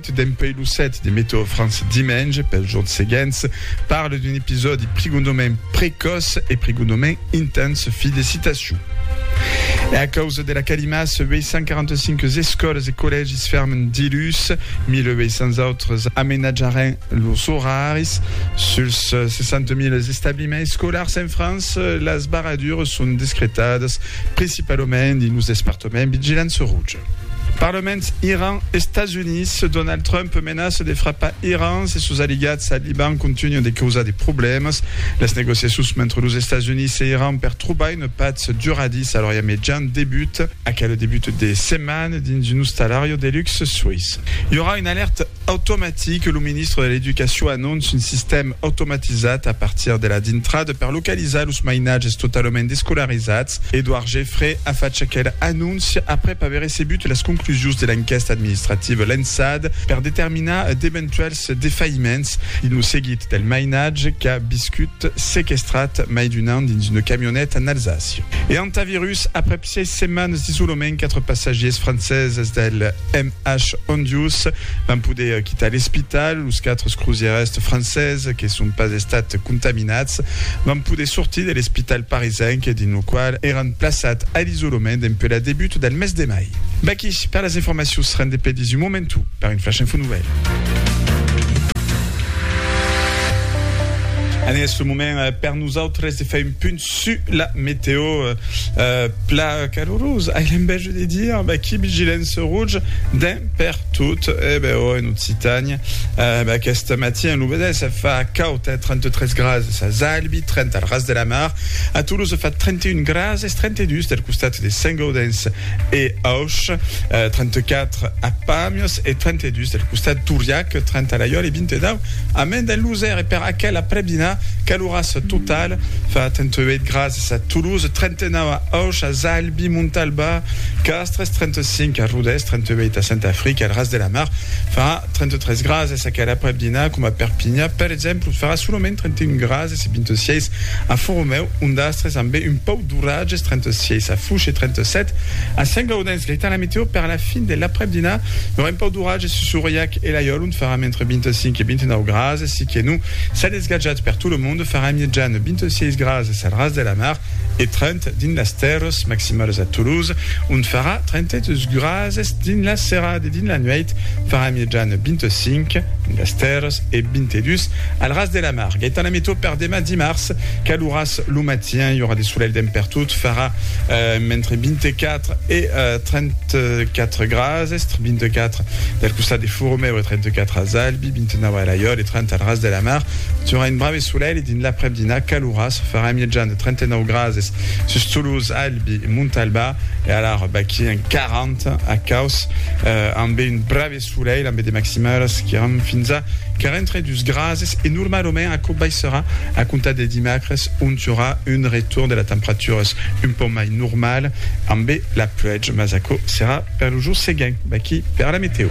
Dempèi lo 7 de Meteo France dimenge pels jorns seguents parle d'un episòdi prigondament precòç e prigondament intens. Fi de citacion. E a causa de la calima, 845 escòlas e collègis fermen diluns, 1.800 autres amenatjaràn los oraris. Suls 60.000 establiments escolars en França, las barradures son descretadas principalament dins los despartaments vigilància roja. Parlament Iran, Estats Units, Donald Trump menaça de frapar Iran se sos aliats al Liban contunhan de causar de problèmas. Las negociacions mentre los Estats Units e Iran per trobar una patz duradissa a l'Orient Mejan debuta. Aquel debut de setmana dins un ostalariu de luxe suís i aurà una alèrta. Automatic, lo ministre de l'Educacion anonce un sistèm automatizat a partir de la dintrada per localizar los mainatges totalament descolarizats. Edouard Geffray a fach aquela anóncia aprèp aver recebut las conclusions de l'enquèsta administrativa lançada per determinar d'eventuèls defailliments dins lo seguit del mainatge qu'a viscut sequestrat mai d'un an dins una camioneta en Alsàcia e Hantavirus, aprèp Sièis setmanes d'isolament, quatre passatgiers franceses del MH Hondius van poder quitar l'espital. Los quatre crosièrs franceses que son pas estats contaminats van poder sortir de l'espital parisenc dins lo qual èran plaçats a l'isolament dempuèi la debut del mes de mai. Vaqui per las informacions, rendé pedís un momentu per un Flash Info Nouvèl. Anés lo moment per nosautres de far un punt Su la meteo, pla calorosa, ai l'enveja de dire, beh qui vigilance rouge d'un per tot, e beh ò en Occitània, beh aquest matin lo vedètz, se fa caud, hè, 33 grases as Albi, 30 al ras de la mar, a Toulouse fa 31 grases, 32 del costat de Saint-Gaudens e Auch, 34 a Pàmios e 32 del costat d'Auriac, 30 a Laiòle e 29 a Mende en Losèr, e per aquela prèp dinar, Horas total fa tentuèit grasas a Toulouse, 39 a Auch, a Zalbi, Montalba, Castres, 35 a Rodés, 38 a Santafric, al Ras de la Mar farà 33 grasas, aquel aprèp dinar coma Perpinha per exemple farà solament 31 grasas e 26 a Foromèu, Ondastres ambé un pauc d'oratges, 36 a Fouche e 37 a Sent Gaudens. Gaità la meteo per la fin de l'aprèp dinar, i aurà un pauc d'oratges sus Auriac e Laiòl ont farà mentre 25 e 29 grasas, siqué non, Esclatjat per tot lo monde, farà miètjan 26 grases al ras de la mar e 30 dins las tèrres maximalas a Toulouse, ont farà 32 grases dins la serada e dins la nuèit farà miètjan 25 dins las tèrres e 22 al ras de la mar. Gaëtan Lamethot, Per demà dimars, caloràs lo matin, i aurà de solelh dempè pertot, farà entre 24 e 34 grases, 24 del costat de Furumèu e 34 als Albi. 29 a Elaiòl e 30 al ras de la mar. Durant un brave solelh e dins l'aprèp-dinar calorós, farà mièjan de 39 grades sus Toulouse, Albi e Montalbà e alara baquí en 40 a Cauç, ambe un brave solelh ambe de maximalas qu'iràn fins a 42 grades e normalament aquò baissarà a comptar de dimacres ont i aurà un retorn de las temperaturas un pauc mai normal ambe la pluèja, mas aquò serà per lo jorn seguent baquí per la metèo.